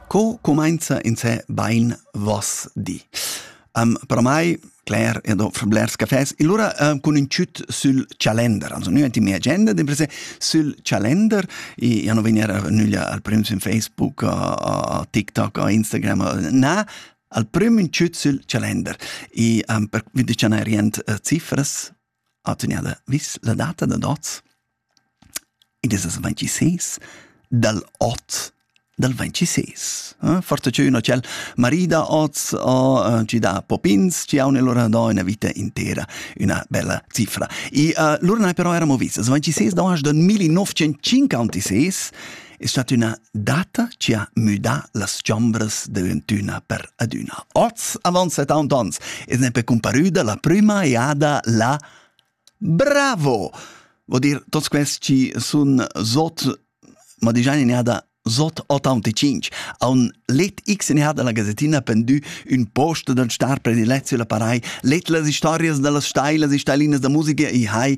Co cumainza insè bain voss di? Um, per mai, Claire, io do fra blers cafés. E allora uh, con un ciut sul calender. Also, nu è in mia agenda, d'imprese sul calender. E io non venire nuglia al primo in Facebook, a TikTok, a Instagram, na, al primo un ciut sul calender. E um, per vi dicere rient uh, eh, ziffers, atgnada vis la data da noz. Id es es 26 dal 8 dal 26. Eh? Forza che üna tschel marida oz ha gi da popins, ci haun lura do üna vita intera üna bella cifra. E uh, lura nai però eramo vis, es 26 da 1956 è stata üna data chi ha müdà las chombras d'eventüna per adüna. Oz, avant setaunt ons, es nempe comparüda la prüma eada la Bravo! Vo dir, tots quels chi sun sot, ma digian in eada sot 85, a un let X in eada la gazettina pendü ün post dal star predilezio la parai, let las historias da las stailas e stailinas da musica e hai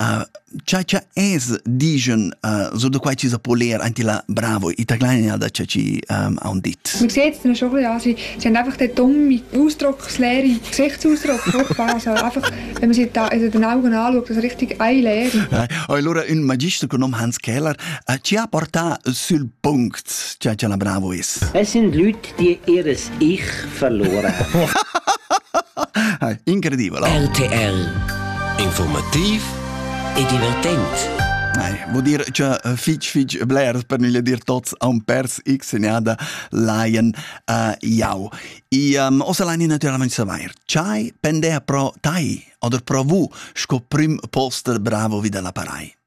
Uh, cha cha es digen uh, so da quai chi sa po ler anti la bravo ita kleine da cha chi um, on dit Mir geht's dann schon also sie haben einfach den dumme Ausdruckslehre Gesichtsausdruck vorgefahren also einfach wenn man sich da also den Augen anschaut das richtig eine Lehre allora un magister genommen Hans Keller uh, ci ha porta sul punct cha cha la bravo is Es sind Leute Dir ihres Ich verlora. Incredibile. RTL. Informativ e divertente. Nein, vuol dire che eh, fitch fitch blers per non dir tots un pers x segnada laien uh, jau. I um, osa laini naturalmente saver, chai pendea pro tai oder pro vu sco prim poster bravo vida la parai.